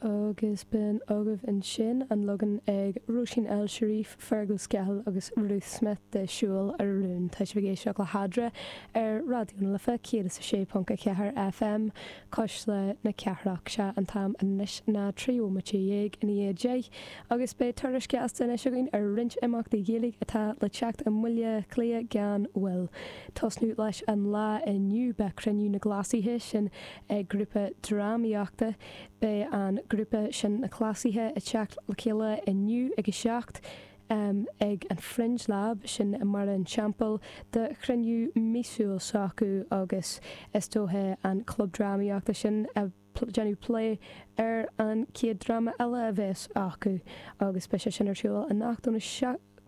Agus b'in agaibh ansin an leagan ag Róisín El Cherif, Fergal Scahill agus Ruth Smith de 'Siúil a Rún'. Tá sibh ag éisteacht le hEadra ar Raidió na Life 106.4 FM, Cuisle na Cathrach. Sea, an t-am anois ná trí bhomaite dhéag i ndiaidh a deich agus beidh tuairisc ghasta anois againn ar roinnt imeachtaí Gaeilge atá le teacht i mBaile Átha Cliath gan mhoill. Tosnú leis an lá inniu beidh cruinniú na gCleasaithe, sin é grúpa drámaíochta, Beidh an grúpa sin Na Cleasaithe ag teacht le chéile inniu ag a 7 ag an Fringe Lab, sin i mBarra an Teampaill, do chruinniú míosúil s'acu agus is dóiche an club drámaíochta sin ag déanamh plé ar an chéad dráma eile a bheas acu agus beidh sé sin ar siúl anocht ón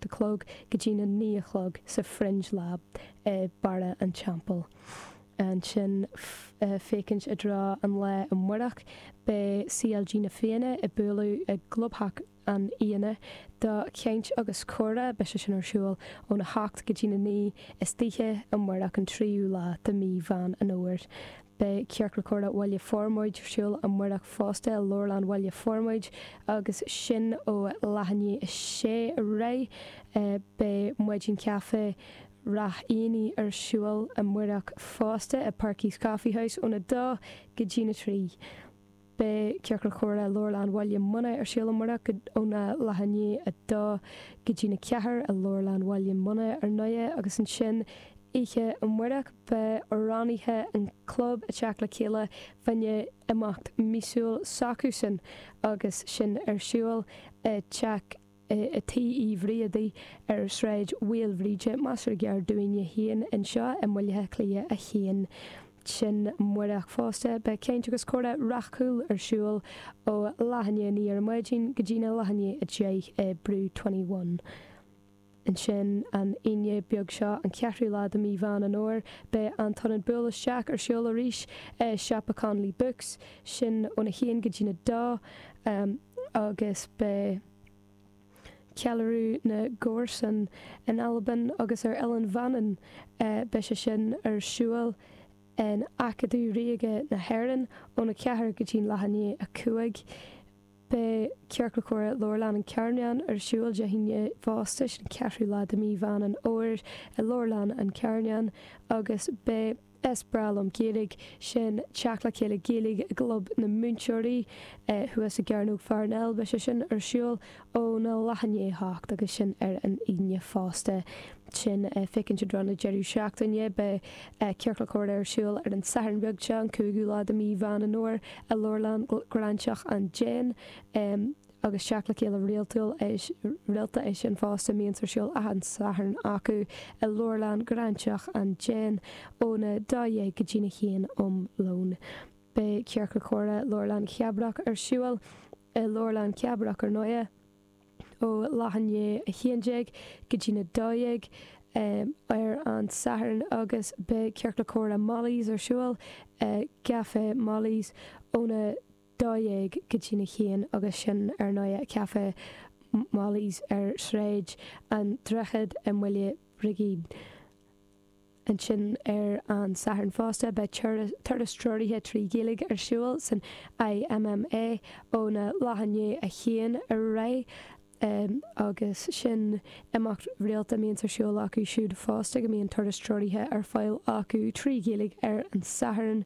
a chlog go dtí na naoi a chlog sa Fringe Lab i Barra an Teampaill. Ansin féachaint i dtreo an lae amárach beidh CLG Na Fianna ag bualadh i gclubtheach na Fianna do chaint agus comhrá. Beidh sé sin ar siúl óna hocht go dtí na naoi istoíche amárach an tríú lá de mí Mheán an Fhómhair. Beidh Ciorcal Comhrá Bhaile Formaid ar siúl amárach fosta i Leabharlann Bhaile Formaid agus sin ó leath i ndiaidh a sé ar aghaidh. Beidh Maidin Caife Ráth Eanaigh ar siúl amárach fosta i Perky's Coffee House ón 2 go dtí na 3. Beidh Ciorcal Comhrá Leabharlann Bhaile Munna ar siúl amárach óna leath i ndiaidh a 2 go dtí'n 4 i Leabharlann Bhaile Munna ar ndóighe agus ansin oíche amárach beidh amhránaithe an chlub ag teacht le chéile fá choinne imeacht míosúil s'acusan agus sin ar siúl i dTeach i dTigh Uí Bhriadaí, ar Sráid Mhaoilbhríde, measartha gar dúinn féin anseo i mBaile Átha Cliath 1. Ansin amárach fosta beidh caint agus comhrá Ráth Cúil ar siúl ó leath i ndiaidh a 9 ar maidin go dtí na leath i ndiaidh a 10 i Brew21. Ansin an Aoine beag seo, an ceathrú lá de Mí Mheán Fhómhair, beidh An tIonad Buail Isteach ar siúl arís i Siopa Connolly Books, sin ón 1 go dtí na 2. amh agus beidh ceiliúradh na gcomharsan in Albain agus ar Oileán Mhanann, beidh sé sin ar siúl in Acadamh Ríoga na hÉireann ón 4 go dtí'n leath i ndiaidh a 5. Beidh Ciorcal Comhrá Leabharlann an Charnáin ar siúl Dé hAoine fosta, sin an 4ú lá de Mí Mheán an Fhómhair i Leabharlann an Charnáin agus beidh. Is breá liom Gaeilge, sin Teacht le Chéile Gaeilge i gClub na Múinteoirí thuas i gCearnóg Pharnell. Beidh sé sin ar siúl óna leath i ndiaidh a 8 agus sin ar an Aoine fosta. Sin féachaint i dtreo na deireadh seachtaine. Beidh Ciorcal Comhrá ar siúl ar an Satharn beag seo, an cúigiú lá de mí Mheán Fhómhair i Leabharlann Ghráinseach an Déin. agus teacht le chéile rialtúil rialta é sin fosta mbíonns ar siúl achan Satharn acu i leabharlann Ghráinseach an Déin óna dó dhéag go dtína haon um lón. Beidh Ciorcal Comhrá Leabharlann Chabrach ar siúl i Leabharlann Chabrach ar ndóighe ó leath i ndiaidh a haon déag go dtína dó dhéag ar an Satharn agus beidh Ciorcal Comhrá Molly's ar siúl i gCafé Molly's óna dó dhéag go dtína haon agus sin ar ndóigh Café Molly's ar Shráid an Droichid i mBaile Brigín. Ansin ar an Satharn fosta beidh turas treoraithe trí Ghaeilge ar siúl san IMMA óna leath i ndiaidh a 1 ar aghaidh agus sin imeacht rialta a mbíonns ar siúl acu siúd fosta go mbíonn turas treoraithe ar fáil acu trí Ghaeilge ar an Satharn.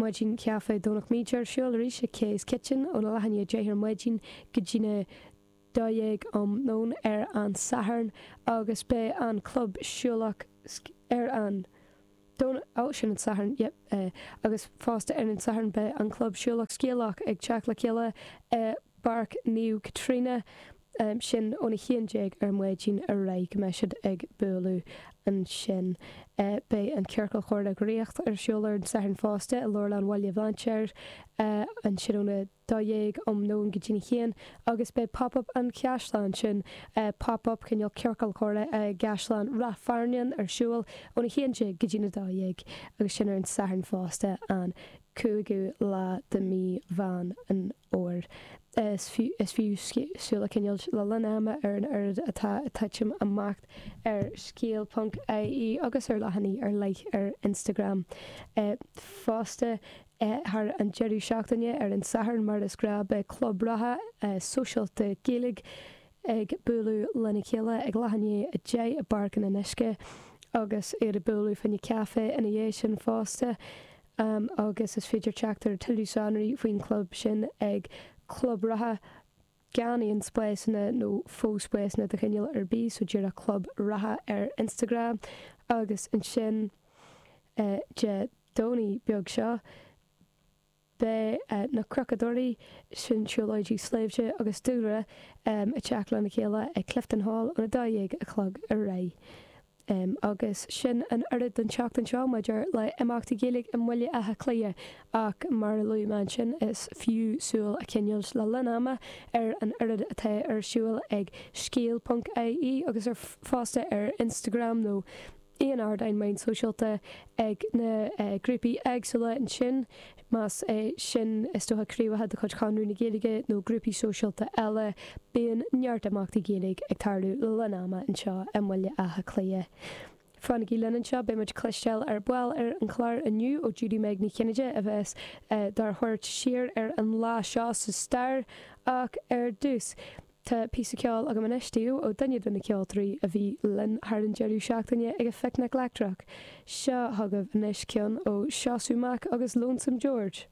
Maidin Caife Dhomhnach Míde ar siúl arís ag Kay's Kitchen óna leath i ndiaidh a deich ar maidin go dtína dó dhéag um nóin ar an Satharn agus beidh an club siúlach ar an Domhnach oh sin an Satharn yep agus fosta ar an Satharn beidh an club siúlach scéalach ag teacht le chéile i bPáirc Naomh Caitríona. sin ón 11 ar maidin ar aghaidh go mbeidh siad ag bualadh ansin. Beidh an Ciorcal Comhrá Dhraíocht ar siúl ar an Satharn fosta i Leabharlann Bhaile Bhlainséir ansin ón 12 um nóin go dtí'n 1 agus beidh Pop Up an Chaisleáin ansin, Pop Up cineál Ciorcal Comhrá i gCaisleán Rath Fearnáin ar siúl ón 11 go dtí'n 12 agus sin ar an Satharn fosta an 5ú lá de mí Mheán an Fhómhair. Is fiú súil a choinneáilt le linn ama ar an oiread atá ag titim amach ar scéal.ie agus ar leathanaigh ar leith ar Instagram fosta thar an deireadh seachtaine. Ar an Satharn, mar is gnáth, beidh club reatha sóisialta Gaeilge ag bualadh lena chéile ag leath i ndiaidh a deich i bPáirc an Fhionnuisce agus iad ag bualadh fá choinne caife ina dhiaidh sin fosta. Am agus is féidir teacht ar tuilleadh sonraí faoin chlub sin ag Club Reatha gan aon spásanna nó fo-spásanna de chineál ar bith, so díreach Club Reatha ar Instagram agus ansin Dé Domhnaigh beag seo beidh na Cnocadóirí, sin siúlóidí sléibhte agus dúlra, ag teacht lena chéile ag Clifton Hall ón 12 a chlog ar aghaidh. Agus sin an oiread den tseachtain seo maidir le imeachtaí Gaeilge i mBaile Átha Cliath ach mar a luaigh mé ansin is fiú súil a choinneáilt le linn ama ar an oiread atá ar siúl ag scéal.ie agus ar fud ar Instagram nó aon ardáin meán sóisialta ag na grúpaí éagsúla ansin. Más é sin, is dócha, craobhacha de chuid Chonradh na Gaeilge nó grúpaí sóisialta eile, bíonn neart imeachtaí Gaeilge ag tarlú le linn ama anseo i mBaile Átha Cliath. Fanaigí linn anseo, beidh muid ag cloisteáil ar ball ar an chlár inniu ó Judy-Meg Ní Chinnéide a bheas dár thabhairt siar ar an lá seo sa stair ach ar dtús, Tá píosa ceoil agam anois daoibh ó duine de na ceoltóirí a bhí linn thar an deireadh seachtaine ag an bPicnic Leictreach. Seo chugaibh anois ceann ó Seosamh Mac agus Lonesome George.